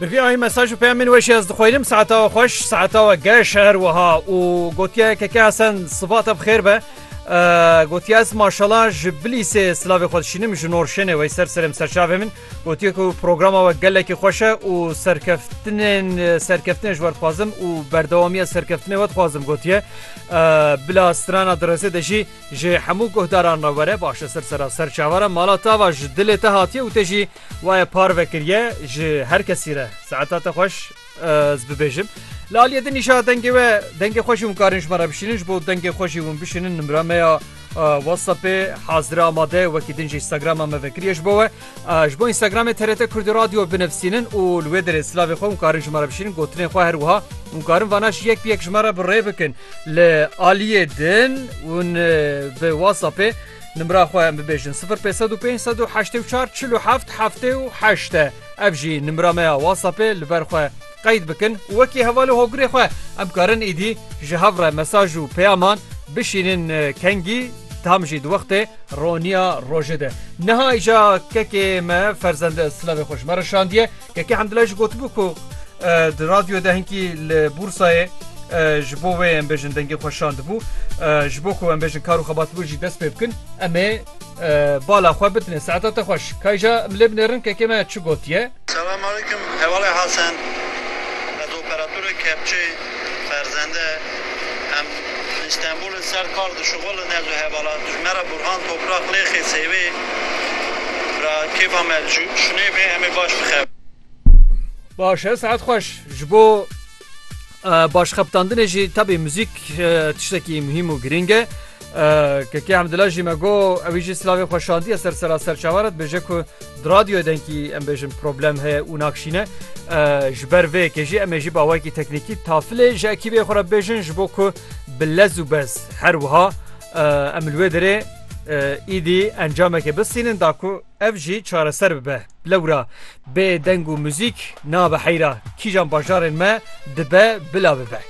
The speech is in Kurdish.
Bi vî ayî mesaj û peyamên weş ez dixweynim saeta we xweş saeta we geş her wiha û gotiye keke hesen sivata bi xêr be gotiye ez maşala ji bilîsê silavê xwe dişînim ji norşênê wey ser serêm serçavê min gotiye ku programa we gelekî xweşe û serkeftinên serkeftinê ji werdixwazim û berdewamiya serkeftinê we dixwazim gotiye bila strana direzê de jî Ji hemû guhdaran re were baş e sirsera ser çavara mala tava ji dilê te hatiye û te jî waye parve kiriye ji her kesî re saeta te xweş ez bibêjim li aliyê din nîşa dengê we dengê xwe jî hûn karin ji me re bişînin ji bo dengê xwe jî hûn bişînin nimra me ya WhatsAppê hazire amade wekî din jî Instagrama me vekiriye ji bo we. Ji bo Instagramê TRT Kurdî Radyo binivîsînin û li wê derê silavê xwe hûn karin ji me re bişînin gotinên xwe her wiha hûn karin vana jî yek bi yek ji me re bi rê bikin li aliyê din hûn bi WhatsAppê nimra xwe em bibêjin 0505844777 e ev jî nimra me ya WhatsAppê li ber xwe qeyd bikin û wekî heval û hogirê xwe em karin êdî ji hev re mesaj û peyaman bişînin kengî tam jî di wextê roniya rojê de. Niha îja kekê me Ferzend Silavê xwe ji me re şandiye. Kekê Hemdilay jî gotibû ku di radyoyê de hinkî li Bûrsayê ji bo wê em bêjin dengê xwe şandibû ji bo ku em bêjin kar û xebat wê jî dest pê bikin em ê Bala xwe bitine saeta te xweş. Kayja em lê binêrin kekê me çi gotiye. Selam aleyküm Hevalê Hasen Ez operatorê kepçê Ferzende Em li Îstenbûlê ser kar dişuxulin Ez û hevala tu ji me re Burhan Toprak Lêxê Sêvê Bira kêfa me li şûnê bê Em ê baş bixebirin. Baş e saet xweş ji bo. Baş xebitandinê jî tebî muzîk tiştekî muhîm û girîng e. Kekê Hemdila jî me got ewî jî silavê xwe şandiye ser sera serçava re dibêje ku di radyoyê denkî em bêjin problem heye û nakşîne. Ji ber vê yekê jî em ê jî bi awayekî teknîkî tafilê ji ekîbê xwe re bibêjin ji bo ku bi lez û bez her wiha em li wê derê êdî encamekê bistînin da ku Ev jî çareser bibe. Lewra bê deng û muzîk nabe heyra kîjan bajarên me dibe bila bibe.